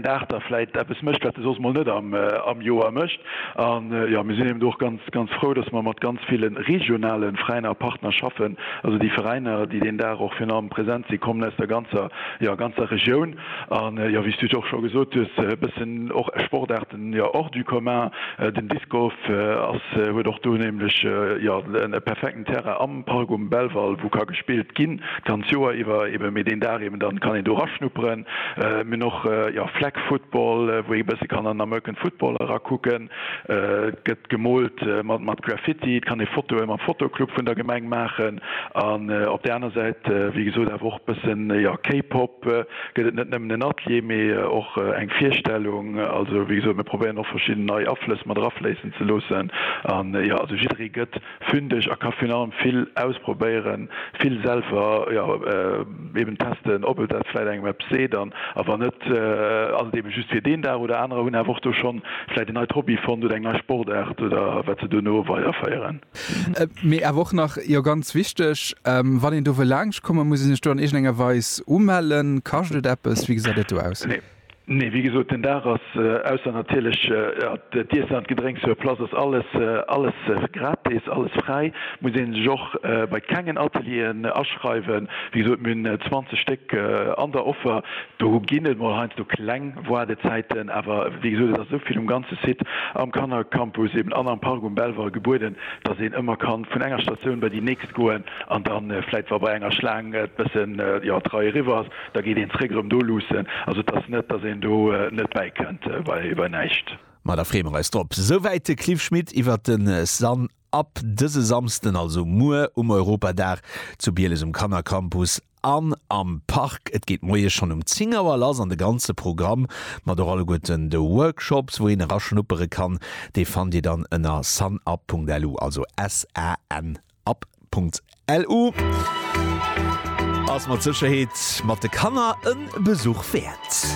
Dag da vläit eppes mécht, wat e soss mol net am Joer mécht. An jo, mir sinn eben do och ganz, ganz frou, dass mer mat ganz ville regionale Veräiner a Partner schaffen, also déi Veräiner, déi deen Dag och virun allem present sinn, kommen aus der ganzer, jo, ganzer Regioun. An jo, wéi s du och scho gesot hues, e bëssen och Sportaarten, jo, hors du commun. Den Disc Golf ass, huet och do nämlech, jo, e perfekten Terrain am Park um Belval, wou ka gespillt ginn, d'ganz Joer iwwer eben, mee deen Dag eben, da kann een do eraschnupperen. Mir hunn och jo Flag Football, wou ee e bësse kann an American Football erakucken. Et gëtt gemoolt mat Graffiti, et kann ee Fotoe mam Fotoclub vun der Gemeng maachen. An op där aner Säit, wéi gesot, awer och e bëssen jo K-Pop. Gëtt et net nëmmen en Atelier, mee och eng Virstellung. Also wéi gesot, mir probéieren och verschidden nei Aflëss mat erafléissen ze loossen. An jo, also jidderee gëtt. Fynnt ech a ka virun allem vill ausprobéieren, vill selwer, jo, eben testen, ob et dat vläit engem eppes seet an a wann net, ass et eben just fir deen Dag oder anerer hunn awer och do schonn vläit en neit Hobby fonnt oder eng nei Sportaart oder wat se dono weiderféieren. Mee awer och nach, jo, ganz wichteg, wann een do wëll laangscht kommen, muss ee sech do an iergendenger Weis umellen? Kascht et eppes? Wéi gesäit et do aus? Nee. Nee, wéi gesot, den Dag ass, ausser natierlech d'Iessen an d'Gedrénks sur place, ass alles, alles gratis, alles fräi. Muss ee sech och bei kengen Atelieren aschreiwen. Wéi gesot, mir hunn 20 Stéck an der Offer. Do ginn et mol heiansdo kleng Woardezäiten, awer wéi gesot, et ass esou vill um ganze Site, am Kannercampus eben an am Park um Belval gebueden, dass een ëmmer ka vun enger Statioun bei déi nächst goen an da vläit, wa bei enger Schlaang et bëssen, jo, d'Rei eriwwer ass, Da geet een zréck erëm do luussen. Also et ass net, datt een do net bäi kënnt bei näischt. Ma da freeë mer eis drop. Souwäit de Cliff Schmit iwwert de Sun Up dëse Samsden, also muer um Europadag zu Bieles um Kannercampus an am Park. Et geet moies schonn um 10 Auer lass an de ganze Programm mat och alleguerten de Workshops, wou een eraschnuppere kann, dee fannt Dir dann ënner sunup.lu, also S-A-N-U-P. App.lu ass mat Sécherheet mat de Kanner e Besuch wäert.